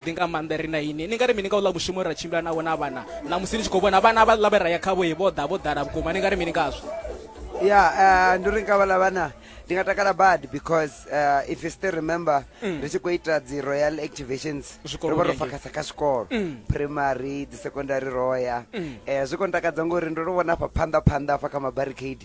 ḓi nga maanḓa ri na ini ni nga ri mini nga u ḽa mushumo ra tshimbila navho na vhana ṋamusi ni tshi khou vhona vhana vha ḽa vhe ra ya khavho ye vho ḓa vho ḓala vhukuma ni nga ri mini ngazwo ya eh, ndi ri nga vhala vhana ndi nga takala bad because uh, if you still remember mm. ri tshi khou ita dzi royal activations ro vha ro fakasa kha zwikolo mm. primary dzi secondary roya um mm. eh, zwi khou ntakadza ngori ndo ro vhona afha phanḓa phanḓa afha kha mabarricade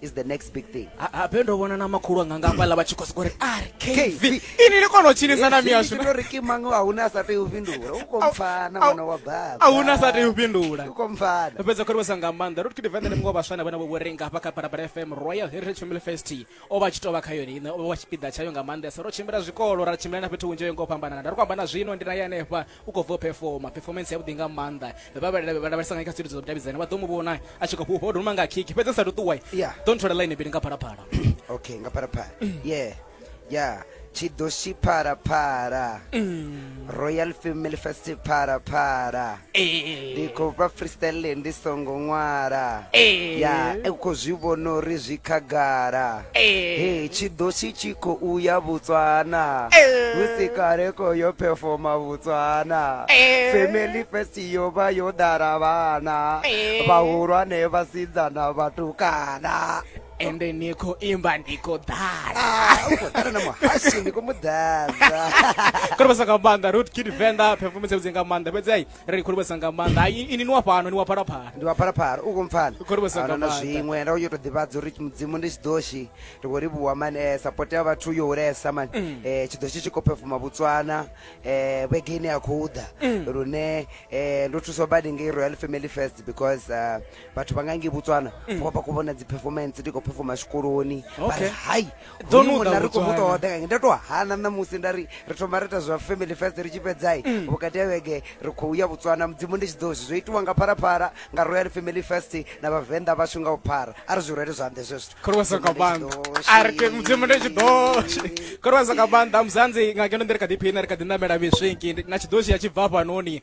is the next big thing habe ndo vhona na makhulu anga nga hafhaḽa vha tshi khou sokou ri ari kv ini ni kona u tshinisa na miyashu ndo ri kimanga a huna sa tei u fhindula u kompfana mwana wa baba a huna sa tei u fhindula u kompfana ndo fhedza khorivhesa nga maanḓa ro ri kidivende ni muṅwe vhaswa na vhana vho renga hafha kha parapara fm royal heritage family fest o vha tshi tou vha kha yone ine o vha tshipiḓa tshayo nga maanḓesa ro tshimbila zwikolo ra tshimbila na fhethu hunzhi yo ngo fhambanana nda ri ku amba na zwino ndi na ye hanefha u khou bva u performa performance yavhuḓi nga maanḓa vha vhalavhelesa nga kha zwithu zwa vhudavhidzani vha ḓo mu vhona a tshi khou fhufha o doma nga khiki fhedzi sa tou ṱuwa ḓo nthola ḽaini bili nga phalaphala okay nga phalaphala ye ya tshidoshi phalaphala mm. royal family fest phalaphala eh. ndi khou vha freestyle ndi songo ṅwala eh. ya u khou zwi vhona uri zwi khagala Hey, tshidosi tshi khou ya Botswana musi kale ko yo performa Botswana family first yo vha yo ḓala vhana vhahulwane vhasidzana vhatukana ende ni khou imba ndi khou ḓala ah, u khou ḓala na muhashi ndi khou mu ḓadza kone vha sa nga maanḓa root kid venḓa performance yavhudzi nga maanḓa fhedzi ai ri khou livhuwesa nga maanḓa Hai, ini ni wa fhano ni wa phalaphala ndi wa phalaphala u khou mpfana Khou livhuwesa nga Ahuna na maanḓa. zwiṅwe nda yo to ḓivhadza uri mudzimu ndi tshidoshi ri khou livhuwa mani eh, support ya vhathu yo hulesa mani Mm. eh, tshidoshi tshi khou pefuma botswana eh, vhege ine ya khou ḓa Mm. lune eh, ndo thuswa badi ngei royal family first because uh, vhathu vha nga ngei botswana Mm. vho vha khou vhona dzi-performance ndi khou pefuma zwikoloni vha ri Okay. hai ḓo nu ḓa ri khou mu ṱoḓa kange nda tou hana ṋamusi nda ri ri thoma ri ita zwa family first ri tshi fhedzai mm. vhukati ya vhege ri khou ya botswana mudzimu ndi tshi ḓo zwi zwo itiwa nga pharapara nga royal family first na vhavenḓa vhashu nga u phara a ri zwi rwele zwanḓe zwe zwithu mudzimu ndi tshi ḓo khorwasa nga maanḓa muzanzi nga ngeno ndi ri kha ḓiphina ri kha ḓi ṋamela miswinki na tshiḓoshi ya tshi bva fhanoni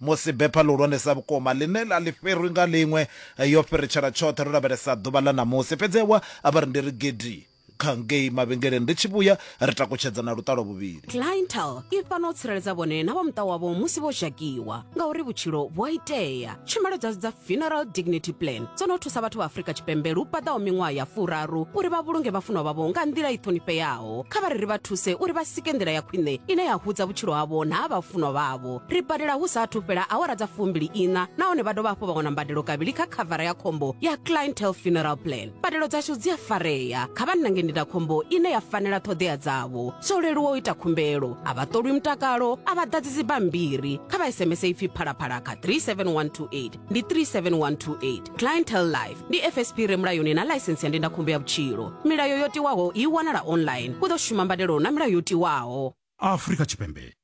Musi bepha ḽihulwanesa vhukuma, ḽine ḽa ḽi fhirwi nga ḽiṅwe, yo fhiritshela tshoṱhe, ro lavhelesa ḓuvha ḽa ṋamusi. Fhedzi ewa, a vha ri ndi ri gidi kha ngei mavhengeleni. Ri tshi vhuya, ri takutshedza na luṱalo vhuvhili. Clientele i fhano u tsireledza vhone na vha muṱa wavho musi vho zhakiwa, ngauri vhutshilo vhu a itea. Tshumelo dzashu dza Funeral Dignity Plan dzo no thusa vhathu vha Afrika Tshipembe lu paḓaho miṅwaha ya furaru uri vha vhulunge vhafunwa vhavho nga nḓila i ṱhonifheaho. vhaho kha vha ri ri vha thuse uri vha sike nḓila ya khwine ine ya hudza vhutshilo havho na ha vhafunwa vhavho ri badela hu sa athu fhela awara dza fumbili ina nahone vha dovha hafhu vha wana mbadelo kavhili kha khavara ya khombo ya clientele funeral plan mbadelo dzashu dzi a farea kha vha nange ndindakhombo ine ya fanela ṱhoḓea dzavho zwo leluwa u ita khumbelo a vha ṱolwi mutakalo a vha ḓadzi dzibammbiri kha vha sms ipfi phalaphala kha 37128 ndi 37128 clientel life ndi fsp re mulayoni na ḽaisensi ya ndindakhombo ya vhutshilo milayo yo tiwaho i wanala online u ḓo shuma mbadelo na milayo yo tiwaho afrika tshipembe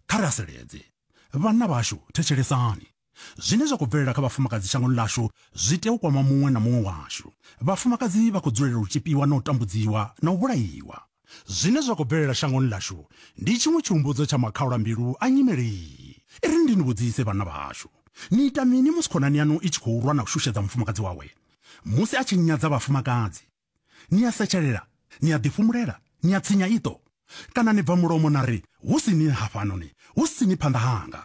kha ri haseledze vhanna vhashu thetshelesani zwine zwa khou bvelela kha vhafumakadzi shangoni ḽashu zwi tea u kwama muṅwe na muṅwe washu vhafumakadzi vha khou dzulela u tshipiwa na u tambudziwa na u vhulaiwa Zwine zwa khou bvelela shangoni ḽashu ndi tshiṅwe tshihumbudzo tsha makhaulambilu a nyimele iyi. I ri, Ndi ni vhudzise, vhanna vhahashu, ni ita mini musi khonani yaṋu i tshi khou lwa na u shushedza mufumakadzi wawe? Musi a tshi nyadza vhafumakadzi, ni a setshelela, ni a ḓifhumulela, ni a tsinya iṱo, kana ni bva mulomo na ri, Hu si ni hafhanoni, hu si ni phanḓa hanga?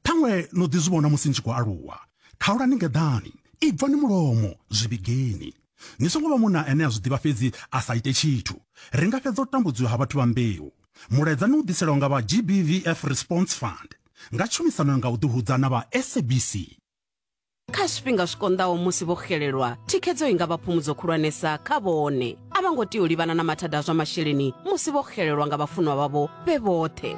Ṱhaṅwe no ḓi zwi vhona musi ni tshi khou aluwa. Khaulani ngeḓani, ibvani mulomo, zwi vhigeni. Ni songo vha munna ane a zwi ḓivha fhedzi a sa ite tshithu. Ri nga fhedza u tambudziwa ha vhathu vha mbeu. Mulaedza ni u ḓiselwa nga vha GBVF Response Fund nga tshumisano nga u ḓihudza na vha SABC. Kha zwifhinga zwi konḓaho musi vho xelelwa, thikhedzo i nga vha phumudzo khulwanesa kha vhone. A vha ngo tea u livhana na mathada a zwa masheleni musi vho xelelwa nga vhafunwa vhavho vhe vhoṱhe.